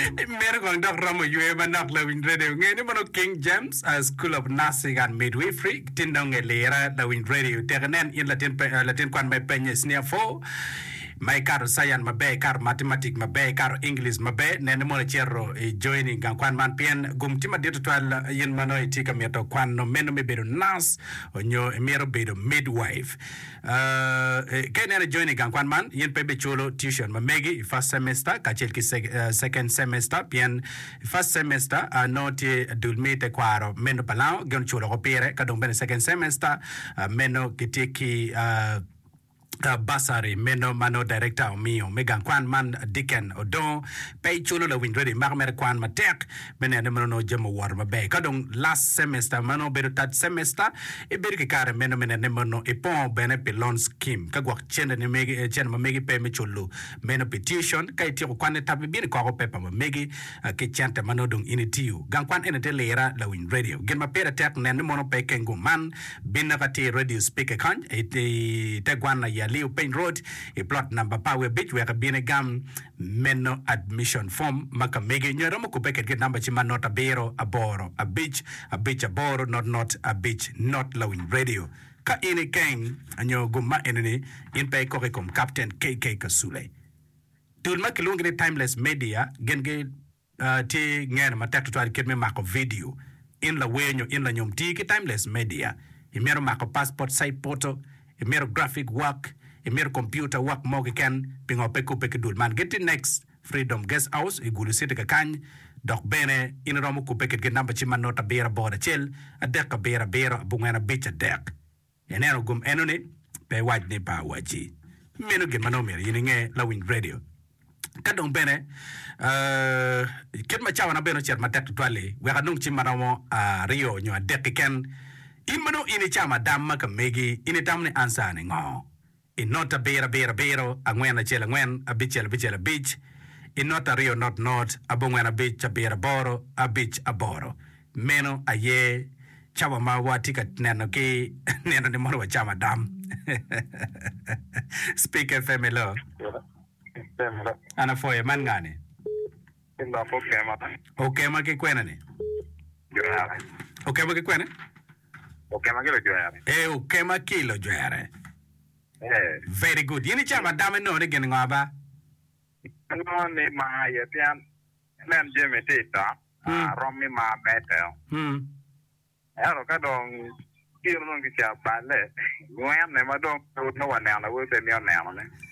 Meno kong dok romo yweyo manok lawiny radio nge ni mono King James School of Nursing and Midwifery tin dong e lira lawiny radio tek inen in latin kwan ma i penya i senior four ma i kato science maber i kato mathematic maber i kato English maber nen ni mono i cito i join i gang kwan man pien gum tye madit tutwal in ma nongo i tye ka mito kwano meno me bedo nurse onyo i mito bedo midwife Ka ineno ijoin i gang kwan man, in pe ibiculo tuition ma megi i first semester kacel ki second semester pien i first semester nongo tye dul me tekwaro meno pa lango gin oculo woko pire ka dong bene second semester meno kitye ki bursary meno ma nongo director omiyo me gang kwan man Deacon Odongo. Pe iculo lawiny Ready imako mere kwan matek. me neno ni ma nongo jami owoto maber. Ka dong last semester ma nongo bedo third semester, ibedo ki kare meno me neno ni ma nongo ipongo bene pi loan scheme. Ka gwok centeni megi, eh, cente ma megi pe me culo meno pi tuition, ka ityeko kwanni tap ibino ikoko pepa ma megi ah, ki cente ma nongo dong in itiyo. Gang kwan eni tye lira lawiny radio. Gin ma pire tek nen ni mono pe ikeng gung man. Binne ka tye i radio speaker kany, i, i te gwanna i Aliu Piny Road, i plot namba pa wiye abic wek ibin igam Meno admission form ma ka mege nyo iromo kubbe kedgi i number ci ma not abiro aboro abic abic aboro not not abic not lawiny radio ka in i keng nyo gum ma eni ni in pe ikoko i kom captain KK Kasule. Dul ma kilwongi ni timeless media gin gi Tye ngene matek tutwal kit me mako vidio. In lawer nyo in lanyom tii ki Timeless Media. Imito mako passport size photo, imito graphic work, imito computer work mo keken, pingo pe ikubbe ki dul man? Gitye next Freedom Guest House i Gulu City kakany, dok bene in iromo kubbe kitgi i number cim man note abiro aboro acel adek abiro abiro abongwen abic adek. Ineno gum enoni? Pe iwac ni pe awacci. Meno gin ma nongo myero in inge, lawiny redio. Ka dong bene, ee, kit ma cawana bene ocito matek tutwal-li, wek anong cim ma romo aryo nyo adek keken. In ma nongo in icamo adamma ka megi, in itamo ni an saane ngo? I not abiraabiraabiro angwen acel angwen abicel abicel abic I not aryo not not abongwen abic abiraaboro abic aboro Meno aye cawa ma watye ka neno ki nino ni mono wacam adam Speaker Family An apwoyo man nga ni? Okema ki kwene ni? Okema ki kwene? Okema ki lojwere. Ee, okema ki lojwere. Ee. Very good. In icamo ada me nongo ni gin ngo aba? Anongo ni mar aye pien nen jami tye i dok, arom mi mar mede. Ento ka dong kiro dong kica balle, nywene ma dong pe waneno aye pe imito nenone.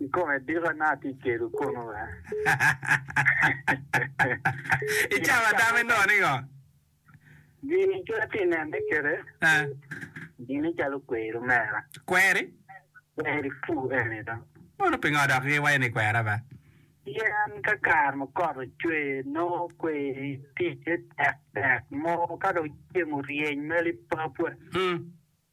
I kom adika na atye kelo kono be? I cawa tam inongo ningo? Gini kit atye nene kede gini calo kweri mera. Kweri? Kweri pu eni do. Mano pingo dok iwaco ni kwera be? Pien ka kare ma kot ocwe nongo kweri ticce tek tek mo ka dong ceng oryeny meli papwe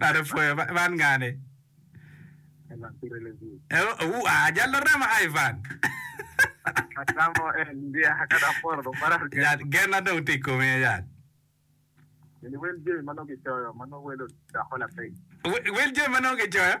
Kare pwoyo man ngani. Ajal Lurema ai Van. Yat genna dong tye i komi aye yat. Wel jami ma nongo kicoyo.